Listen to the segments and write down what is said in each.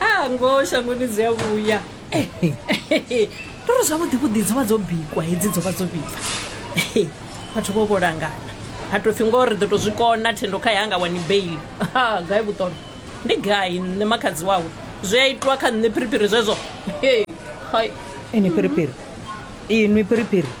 a ngoho shangoni dzi a vhuya tori zwavhuḓi vhuḓi dzo vha dzo bikwa hedzi dzo vha dzo vhibva vhathu vho vho langana ha tou pfhi ngoho ri ḓo tou zwi kona thendo kha yanga wani bail ha gai vhuṱono ndi gai nṋe makhadzi wawe zwi a itwa kha nṋe phiriphiri zwezwo hai ini phiriphiri inwi phiriphiri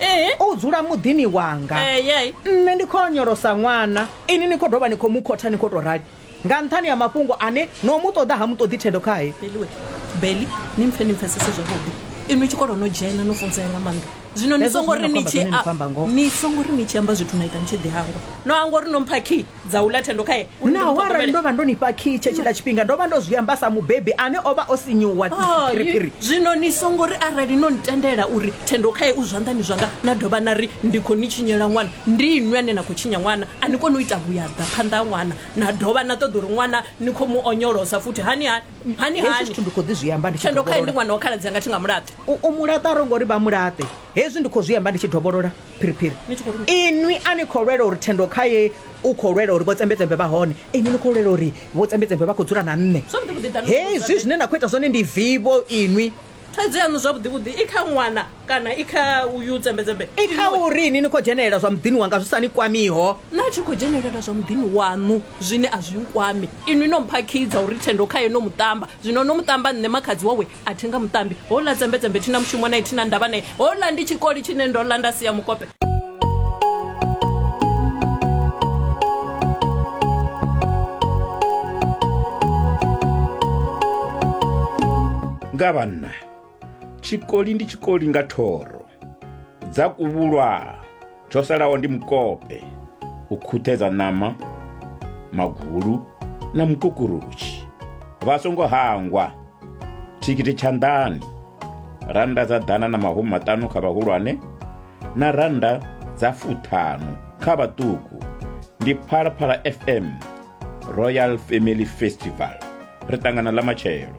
Ee. u dzula muḓini wanga Eh, yai. nṋe ndi khou onyolosa ṅwana ini ni khou dovha ni khou mu khotha ni khou tou rali nga nṱhani ha mafhungo ane no mu ṱoḓa ha mu ṱoḓi thendo khae beliwe beli ni mpfe ni mpfesese zwavhuḓi inwi tshikolo no dzhena no funzea nga maanḓa zwino ni Hezwo songo zwine ri na ni khou amba tshi zwone ni khou amba ngoho. ni songo ri ni tshi amba zwithu na ita ni tshi ḓi hangwa no hangwa uri no mpha key dza u ḽa thendo khae uri ndi mu naho arali ṱhogomele. ndo vha ndo ni fha kii tshetshila tshifhinga ndo vha ndo zwi amba sa mubebi ane o vha o sinyuwa Oh, phiriphiri ni- zwino ni songo ri arali no ntendela uri thendo khae u zwanḓani zwanga na dovha na ri ndi khou ni tshinyela ṅwana ndi inwi ane na khou tshinya ṅwana a ni koni u ita vhuyaḓa phanḓa ha ṅwana na dovha na ṱoḓa uri ṅwana ni khou mu onyolosa futhi hani hani hani hezwi hani zwithu ndi khou ḓi zwi amba ndi tshi thendo khae ndi dovholola ṅwana wa khaladzi anga thi nga mulaṱe u u mulaṱa ro ngori vha mulaṱe hezwi ndi khou zwi amba ndi tshi dovholola phiriphiri inwi a ni khou lwela uri thendo kha ye u khou lwela uri vhotsembedzembe vha hone inwi ni khou lwela uri vhotsembedzembe vha khou dzula na nṋe hezwi zwine na khou ita zwone ndi vivo inwi thaidzo yaṋu zwavhuḓivhuḓi i kha ṅwana kana i kha uyu tsembedzembe i kha uri ini ni khou dzhenelela zwa muḓini wanga zwi sa ni kwamiho na tshi khou dzhenelela zwa muḓini waṋu zwine a zwi nkwami inwi no mphakhidza uri thendo khaye no muṱamba zwino no muṱamba nṋe makhadzi wawe a thi nga muṱambi houḽa dzembedzembe thi na mushumo nae thi na ndavha nae houḽa ndi tshikoli tshine ndo ḽa nda sia mukope nga vhanna tshikoli ndi tshikoli nga thoro dza kuvhulwa tsho salaho ndi mukope u khuṱhedza ṋama magulu na mukukurutshi vha songo hangwa thikhithi tshanḓani rannda dza ḓana na mahumi maṱanu kha vhahulwane na rannda dza fuṱhanu kha vhaṱuku ndi phalaphala fm royal family festival ri ṱangana ḽa matshelo